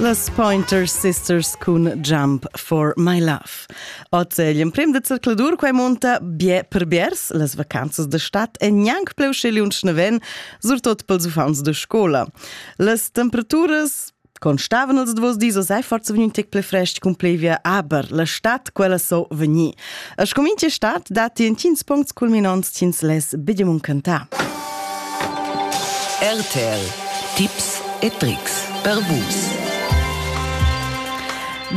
Las Pointer Sisters cun Jump for My Love. Oz è l'emprim de zercladur quai monta bie per biers las vacanzas de stat e gnanc pleu sche lunsch neven, surtot pels uffants de scola. Las temperaturas Constavan els duos dis a sei forza vegni un tec ple frest cun plevia, aber la stat quella so vegni. A scomince stat datti intgins puncts culminants ch'ins less bedemon cantar. RTL Tips e Tricks per Vus.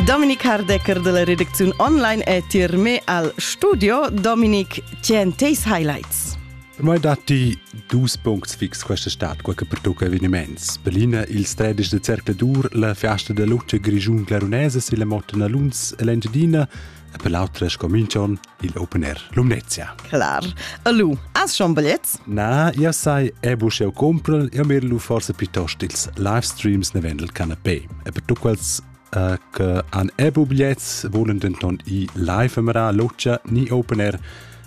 Dominik Hardecker della redaktion online è tir me al studio. Dominik, tien teis highlights? Mai datti dus puncts fix questa stat, quel che pertocca eveniments. Berlina, ils 13 de cercle dur, la fiasta de luce grigiun glarunese, si la mottena Luns e l'Engiadina, e per l'autra scominchon il open air Lumnezia. Clar. Alu, as schon biglets? Na, io sai, e busch eu compron, io mirlu forse piuttost ils live streams ne vendel canapé. E per tu quels Uh, che han ebu biglets volen denton i live amara locia ni open air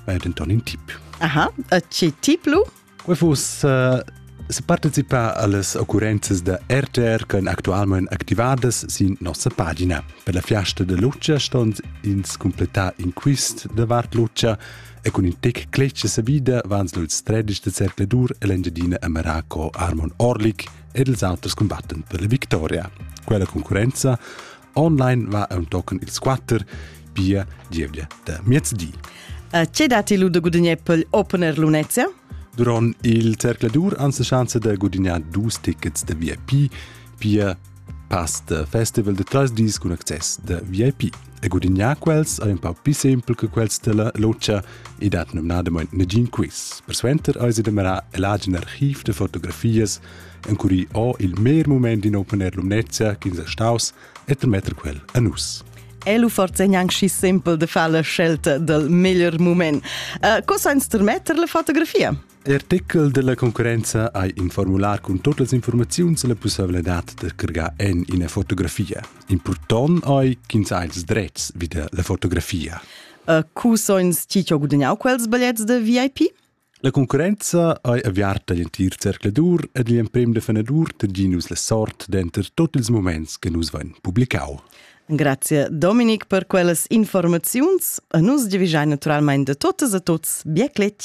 weil denton in tip aha e ci tip lu Quei fuss uh, separtecipar allas occurrenzas da RTR che actualmente activadas sin nossa pagina. Per la fiasta de Lucia ston ins completar in quist de Vart Lucia e con in tec clece sa vida vans luts 13 de Cercledur e l'Engiadina a Maraco Armon Orlik ed els alters combatten per la victoria. Quella concurenza online va tochen ils quatter, pia gievgia da miezdi. Che dati lu da gudagnare per opener lunezia? Durant il zercladur han la chance da gudagnare dus tickets da VIP, pia pass da festival de tres dis cun access da VIP. E gudagnare quels è un po' più semplice che quels della loggia e dat nomnadamente negin quiz. Persuenter eis da mira l'agin archiv de fotografies encurì ho il mer mument in opener lumnezia ch'ins è staus e termetter quel a nus. E lu forse gnanc schi simpel de far la scelta del meglier moment. Uh, co sa intermetter la fotografia? L'artikel della concorrenza ha in formular con tutte le informazioni e la possibilità di creare in una fotografia. Important è che ha ils drets wieder la fotografia. Uh, cu so ins ti gudagnau quels bigliettes de VIP? La concurrenza ei aviarta igl entir zercladur ed igl emprem defenadur tgi nus la sort denter tot ils moments che nus vein publicau. Grazie Dominic per quellas informaziuns. A nus giavischai naturalmein de totas e tots bien cletg.